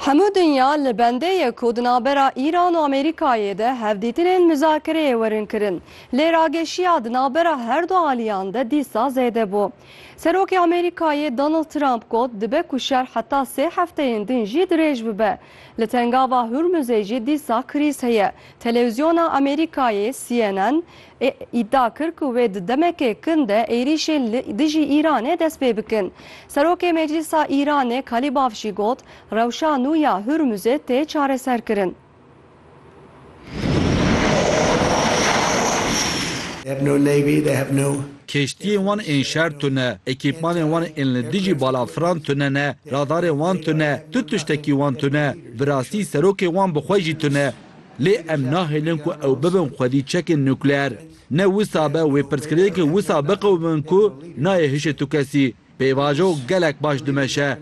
Hemû dinya li bendê ye ku di navbera Îran û Amerîkayê de hevdîtinên muzakireyê werin kirin. Lê rageşiya di navbera her du aliyan de dîsa zêde bû. Serokê Amerîkayê Donald Trump got dibe ku şer heta sê hefteyên din jî dirêj bibe. Li Tengava Hurmuzê jî dîsa krîz heye. Telewîzyona Amerîkayê CNN Ê îdia kir ku wê di demeke kin de êrîşên li dijî Îranê dest pê bikin. Serokê Meclîsa Îranê Kalîbaf jî got, Rewşa nû ya Hurmuzê tê çareserkirin. Keştiyên wan ên şer tune, ekîpmanên wan ên li dijî balafiran tune ne, radarên wan tune, tu tiştekî wan tune. Bi rastî serokê wan bi xwe jî tune. Lê em nahêlin ku ew bibin xwedî çekên nukleer. Ne wisa be wê pirsgirêkê wisa biqewimim ku nayê hişê tu kesî. Pêvajo gelek baş dimeşe.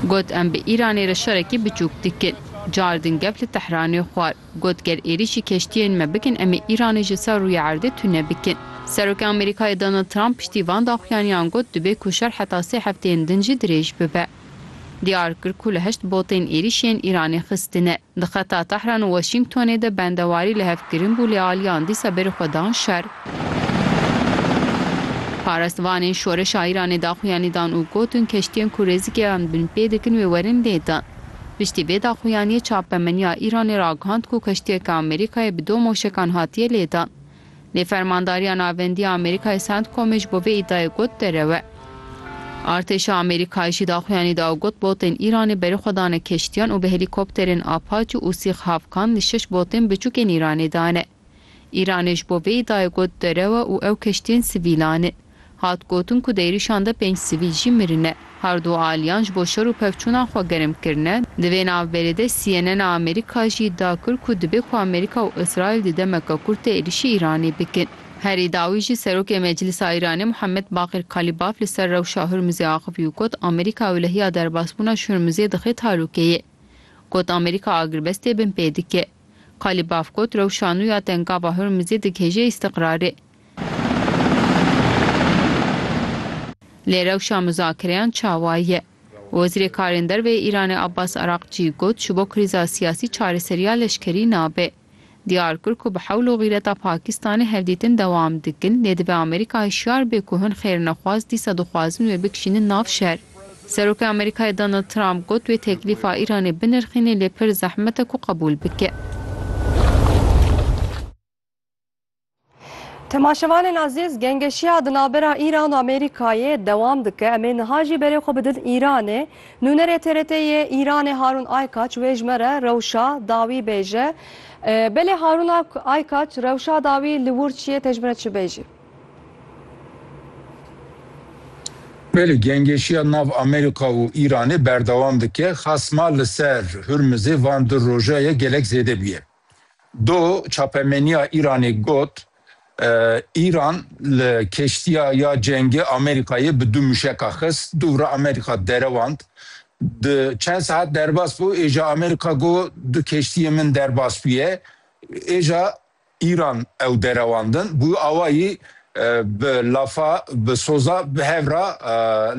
Got em bi Îranê re şerekî biçûk dikin. Car din gef li Tehranê xwar. Got ger êrîşî keştiyên me bikin em ê Îranê ji ser rûyê erdê tune bikin. Serokê Amerîkayê Donald Trump piştî van daxuyaniyan got dibê ku şer heta sê hefteyên din jî dirêj bibe. Diyar kir ku li heşt botên êrîş yên Îranê xistine di xeta Tehran û Washingtonê de bendewarî li hev kirin bû lê aliyan dîsa berî xwe dan şer. Parastvanên şoreşa Îranê daxuyanî dan û gotin keştiyên ku rêzikeyan binpê dikin wê werin lê din. Piştî vê daxuyaniyê çapemeniya Îranê ragihand ku keştiyeke Amerîkayê bi do moşekan hatiye lê dan. Lê Fermandariya Navendî ya Amerîkayê Centcomê ji bo vê îdyayê got derewe. Artêşa Amerîkayê jî daxuyanî da û got botên Îranê berê xwe dane keştiyan û bi helîkopterên Apache û Sîx Havkan li şeş botên biçûkên Îranê dane. Îranê ji bo vê îdyayê got derewe û ew keştiyên sivîlan in. Hat gotin ku di êrîşan de pênc sivîl jî mirine. Her du aliyan ji bo şer û pevçûnan xwe germ kirine. Di vê navberê de CNN a Amerîka jî îdia kir ku dibe ku Amerîka û Îsraîl di demeke kurt de êrîşî Îranê bikin. Herî dawî jî Serokê Meclisa Îranê Muhammed Baqir Kalîbaf li ser rewşa Hurmizê axivî û got, Amerîka wilihiya derbasbûna ji Hurmizê dixe talûkeyê. Got, Amerîka agirbestê binpê dike. Kalîbaf got, Rewşa nû ya tengava Hurmizê digihêje îstiqrarê. Lê rewşa muzakereyan çawa ye? Wezîrê Karên Derve yê Îranê Abbas Araqçî got ji bo krîza siyasî çareseriya leşkerî nabe. Diyar kir ku bi hewl û xîreta Pakistanê hevdîtin dewam dikin lê dibe Amerîka hişyar be ku hin xêrnexwaz dîsa dixwazin wê bikişînin nav şer. Serokê Amerîkayê Donald Trump got wê teklîfa Îranê binirxîne lê pir zehmet e ku qebûl bike. Temaşevanên azîz, gengeşiya di navbera Îran û Amerîkayê dewam dike. Em ê niha jî berê xwe bidin Îranê. Nûnerê TRT yê Îranê Harûn Aykaç wê ji me re rewşa dawî bêje. Belê Harûn Aykaç, rewşa dawî li wir çi ye te ji min re çi bêjî? Belê, gengeşiya nav Amerîka û Îranê berdewam dike. Xasma li ser Hurmizê van du roja ye gelek zêde bûye. Do çapemeniya Îranê got, Îran li keştiya ya cengê Amerîkayê bi du mûşeka xist, dûvra Amerîka derewand. Di çend saet derbas bû, êja Amerîka got, du keştiyên min derbas bûye. Êja Îran ew derewandin. Bû awayî bi lafa, bi soza bi hev re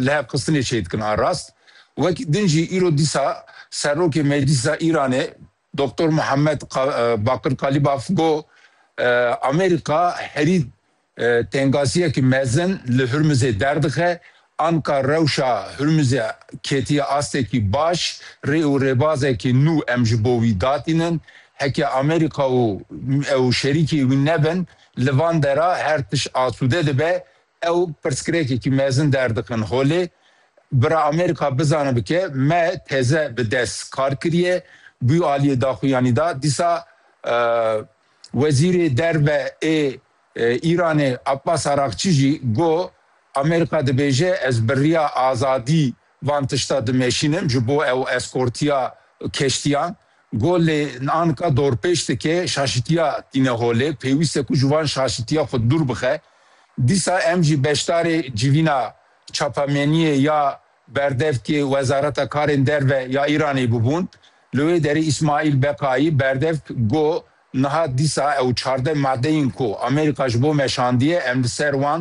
lihevxistinê çêdikin a rast. Wek din jî îro dîsa Serokê Meclîsa Îranê Doktor Muhammed Bakir Kalibaf got, Amerîka herî tengaziyekî mezin li Hurmizê derdixe, anka rewşa Hurmizê ketiye astekî baş, rê û rêbazekî nû em ji bo wî datînin. Heke Amerîka û û şerîkê wî nebin, li van dera her tişt asûde dibe, Ew pirsgirêkekî mezin derdikin holê bira Amerîka bizane bike me teze bi dest kar kiriye bû aliyê daxuyanî da dîsa Wezîrê Derve ê Îranê Abbas Araqçî jî got, Amerîka dibêje ez bi riya azadî Van tişta dimeşînin ji bo ew eskortiya keştiyan got lê anka dorpêç dike şaşitiya tîne holê pêwîst e ku ji van şaşitiya xwe dûr bixe. Dîsa em jî beşdarê civîna çapameniyê ya berdevkê Wezareta Karên Derve ya Îranê bûbûn. Li wê derê Îsmaîl Beqayî berdevk got niha dîsa ew çardeh madeyên ku Amerîka ji bo me şandiye em li ser wan